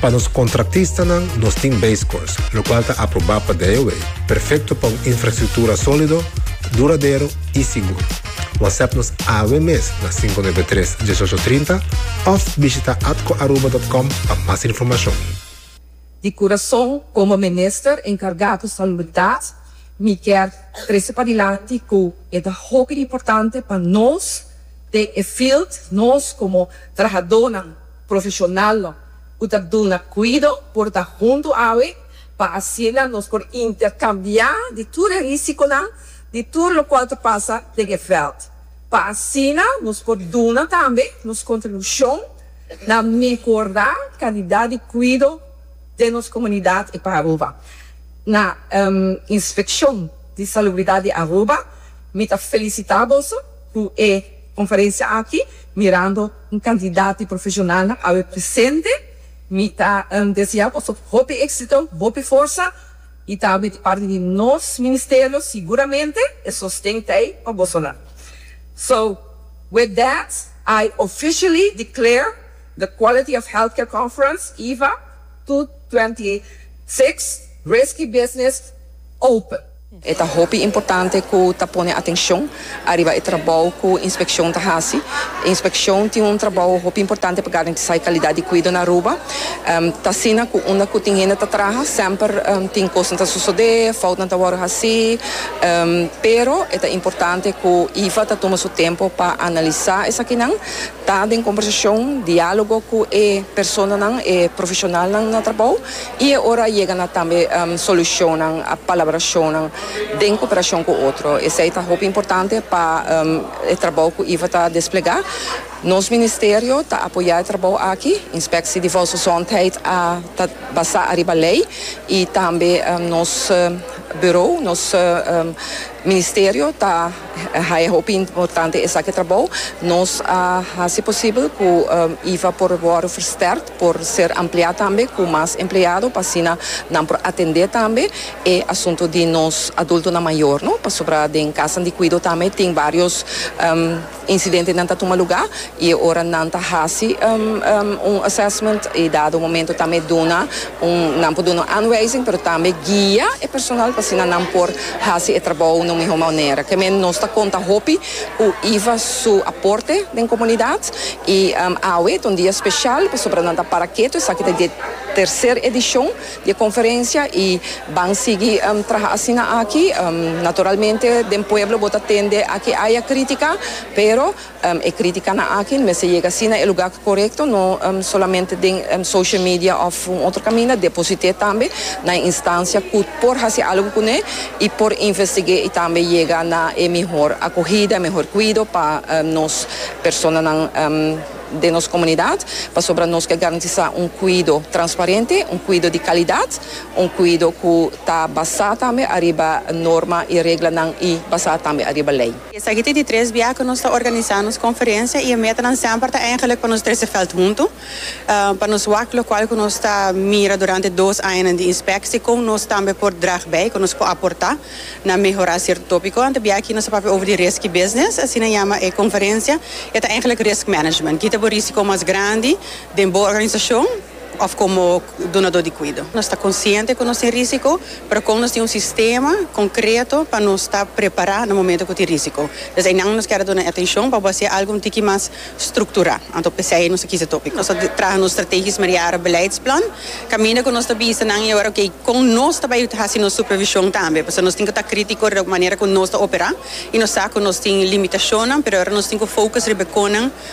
Pa nos contratistanan nos tin base course, locual ta aprobá pa DIOA, perfecto pa un infrastructura solido, duradero y sigur. WhatsApp nos awe mes na cinco nuebe tres, dieshocho trinta of bishita atcoaruba.com pa mas informacion. Di curason, como Minister encarga cu Salubridad, mi kier trece padilanti cu e ta hopi importante pa nos den e field, nos como trahadonan, Profeshonalnan ku ta duna kuido por ta huntu awe pa asina nos por interkambiá di tur e risikonan di tur lokual ta pasa den e vèlt, pa asina nos por duna tambe nos kontribushon na mehorá kalidat di kuido den nos komunidat i pa Aruba. Na Inspekshon di Salubridat di Aruba mi ta felisitá boso ku e konferensia aki mirando Un cantidad di profesionalnan awe presente. Mi ta desea boso hopi exito, hopi forsa y tambe di parti di nos Ministerio siguramente e sosten ta ey pa bosonan. So, with that, I officially declare the Quality of Healthcare Conference, EHVA, two twenty six, Risky Business, open. E ta hopi importante ku ta pone atenshon ariba e trabou ku inspekshon ta hasi. Inspekshon tin un trabou hopi importante pa garantisá e kalidat di kuido na Aruba. Ta asina ku unda ku tin hende ta traha semper tin kosnan ta sosodé, foutnan ta wòrdu hasí. Pero e ta importante ku iva ta tuma su tempu pa analisá esakinan Ta den kombersashon, diálogo ku e personanan, e profeshonalnan na trabou i e ora a yega na tambe solushonnan, palabrashonnan den koperashon ku otro. Esei ta hopi importante pa e trabou ku Iva ta desplegá. Nos ministerio ta apoyá e trabou aki. Inspeksie di Volksgezondheid a ta basá ariba lei i tambe nos burou, nos ministerio ta. Hay a hopi importante esaki trabou. Nos a hasi posibel cu iva por worde versterkt, por ser ampliá tambe cu mas empleado pa asina nan por atende tambe e asunto di nos adultonan mayor, no? Pasobra den casanan di cuido tambe tin varios incidentenan ta tuma lugá. E ora nan ta hasi un assessment e dado momento tambe duna un, nan por duna un aanwijzing pero tambe guia e personal pa asina nan por hasi e trabou na un mihó manera. Ke men nos ta konta hopi ku Iva su aporte den komunidat i awe ta un dia speshal pasobra nan ta para ketu esaki ta di e terser edishon di e konferensia i ban sigui traha asina aki. Naturalmente den pueblo bo ta tende aki aya krítika pero. E critikanan aki no mester yega asina e lugar corecto, no solamente den social media of un otro caminda, deposite tambe na e instancia cu por haci algo cune y por investige y tambe yega na e mihor acogida, e mihor cuido pa nos personanan den nos comunidad, pasobra nos ke garantisa un cuido transparente, un cuido di calidad, un cuido cu ta basa tambe ariba norma y reglanan y basa tambe ariba ley. Esaki ta di tres bia ku nos ta organisá nos konferensia i e metanan semper ta eingelik pa nos trese vèlt huntu, pa nos wak lokual ku nos ta mira durante e dos añanan di inspeksie kon nos tambe por drag bai, kon nos por aportá na mehorá sierto tópikonan. Ta bia aki nos a papia over di riski business, asina yama e konferensia, e ta eingelik risk management. Kita bo risiko mas grandi den bo organisashon? òf komo dunadó di kuido. Nos ta konsiente ku nos tin rísiko, pero kon nos tin un sistema konkreto pa nos ta prepará na momentu ku tin rísiko? Des einan nos kèra duna e atenshon pa bo hasié algu un tiki mas strukturá. Anto p'esei nos a kisa e tópiko. Nos a traha nos strategies mariara beleidsplan kaminda ku nos ta bisa nan i ora, ok, kon nos ta bai hasi nos supervishon tambe? Pasobra nos tin ku ta krítiko riba ku manera ku nos ta operá i nos sa ku nos tin limitashonnan, pero e ora nos tin ku fokus riba e konan.